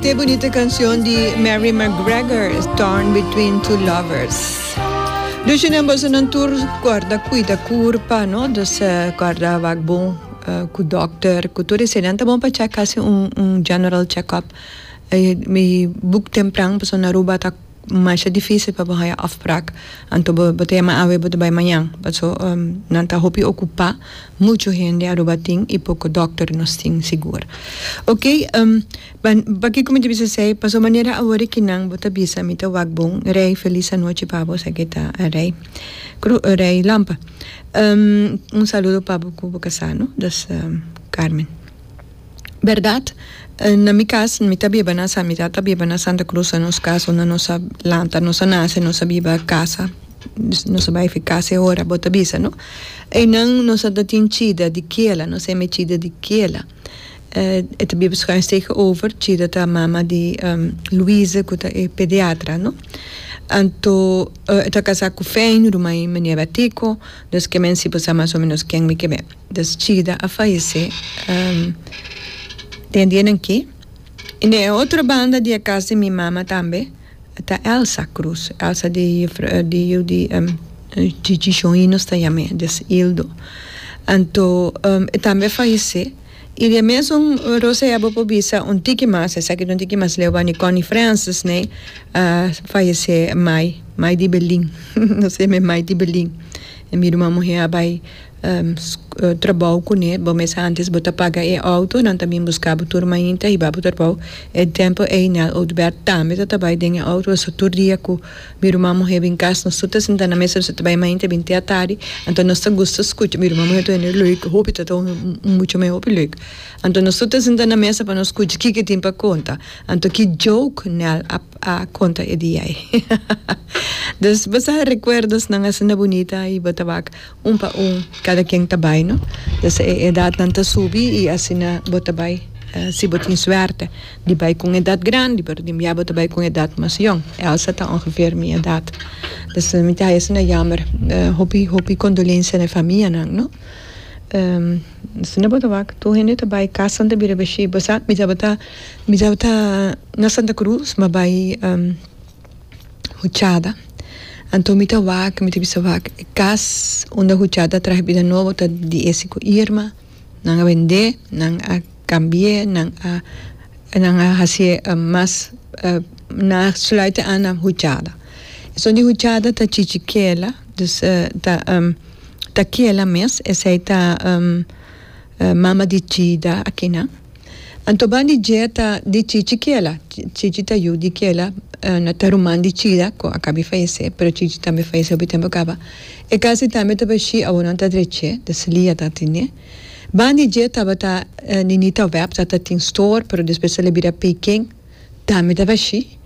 Te bunito cancion di Mary McGregor Torn Between Two Lovers Dushinan boso nan tur corda cuida cur pa no dus corda wak bon cu doctor cu tur esey nan ta bon pa check casi un general check up y book tempran pasobra na Aruba ta Masha dificil pa bo haya afpraak anto bo ta yama awe bo ta bay mañan paso nan ta hopi ocupa mucho hende Aruba tin y poco doctor nos tin sigur ok pakico mi ta bisa esey paso manera awor ki nan bo ta bisa mi ta wak bon rey feliz anochi pa bo esaki ta rey rey lampa un saludo pa bo cu bo casano dus Carmen. Berdad, na mi cas, mi ta biba na sa, mi tata ta biba na Santa Cruz, a nos cas unda nos a lanta, nos a nace, nos a biba casa, nos a bay fi casa e ora bo ta bisa, no? Eynan nos a ta tin chida di kiela, nos eme chida di kiela. E ta biba schuin stegen over, chida ta mama di Louise cu ta e pediatra, no? Anto, e ta casa cu Fijn, ruma y Meneer Batico, dus ke men sipo sa mas o menos ken mi ke ben. Des chida a fayesé den dianan ke. I den e otro banda di e kas di mi mama tambe ta Elsa Cruz, Elsa di di yu di Chichi Shoin nos ta yam'é, des Ildo. Anto e tambe a fayesé. I di e mesun Rosa Ebo por bisa un tiki mas, esaki ta un tiki mas leu wani Connie Francis ne a fayesé mai, mai di Belin, nos yam'é mai di Belin. Mi ruma muhé a bai trabou kuné bo mes antes bo ta paga e outo nan ta bin buska bo tur mainta hiba bo trabou e tempo ei nel Oudbert tambe ta ta bai den e outo so tur dia ku mi ruman muhé bin kas nos tur ta sinta na mes nos ta bai mainta bin te atardi anto nos ta gusta skucha mi ruman muhé ta wende lek hopi ta ta muchu me hopi lek anto nos tur ta sinta na mesa pa nos skucha kiko tin pa konta anto ki jouk nel a konta e dia ei hahaha dus bo sa rekuerdos nan asinda bunita i bo ta wak. Un pa un kada ken ta bai no ya sea e edatnan ta subi y asina bo ta bai si bo tin suerte di bai cu un edat grandi pero den bia bo ta bai cu un edat mas yong Elsa ta ongeveer mi edat pues mi ta asina jammer hopi hopi condolencia na e famianan no asina bo ta wak tur hende ta bai cas nan ta bira bishi bo sa mi tabata mi tabata na Santa Cruz mi a bai. huchada. Anto mi ta wak, mi ta bisa wak e kas unda huchada a traha bida nobo ta di ese ku Irma. Nan a bend'é, nan a kambi'é, nan a nan a hasié mas nan a sluit'é an na huchada. Esun di huchada ta chichi kela, dus ta ta kela mes, esei ta mama di chida akinan. Anto ban di dieta di Chichi kiela. Chichi ta yu di kiela na ta ruman di Chida cu a caba di fayece, pero Chichi tambe fayece hopi tempo caba. E casi tambe ta bashí, awor nan ta drech'é, ta sli a tatiné. Ban di diet tabata Ninita Web, ta tatin store, pero despues tabata bira Peiken. Ta mi ta bashi.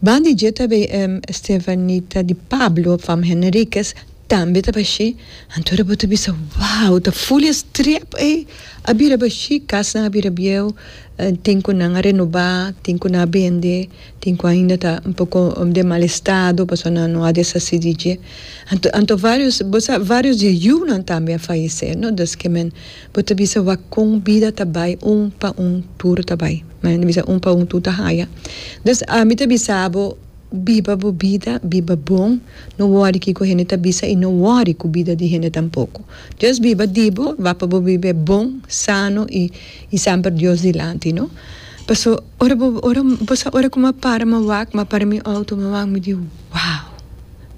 Ban di dje ta bay em Estevanita di Pablo fam Henriquez tambe ta bashi antora bo ta bisa wow ta full e strep ey a bira bashi cas nan a bira bieu tin cu nan a renoba tin cu nan a bende tin cu ainda ta un poco den mal estado pasobra nan no a deshaci di dje anto anto varios bo sa varios di e yu nan tambe a fayece no desque men Bo ta bisa wak kon bida ta bai un pa un tur ta bai. Nan ta bisa un pa un tur ta haya. Dus ami ta bisa bo biba bo bida, biba bon, no wori kiko hende ta bisa i no wori ku bida di hende tampoko. Just biba di bo, wak pa bo biba bon, sano i i samper Dios dilanti, no? Paso ora bo ora bo sa ora ku mi a para mi a wak, mi a para mi outo mi a wak mi di wow!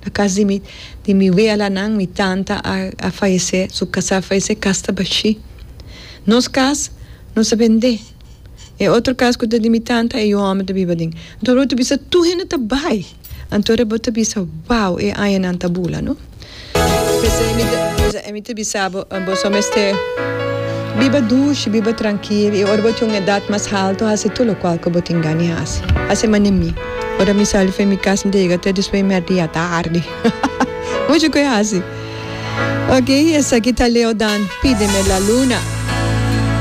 Na cas di mi di mi wealanan mi tanta a a fayece su casa a fayece cas ta bashi nos cas nos a bende e otro cas cu ta di mi tanta e yu homber ta biba aden anto bo ta bisa tur hende ta bay anto bo ta bisa wao e añanan ta bula no pesey mi ta pesey mi ta bisa bo bo so mester biba dushi biba trankil y ora bo tin un edad mas alto haci tur locual cu bo tin gana di haci haci manera mi. Ora mi sali for mi cas mi ta yega ta despues mi ardi ya ta ardi mucho cu e haci oke esaki ta Leo Dan pide me la luna.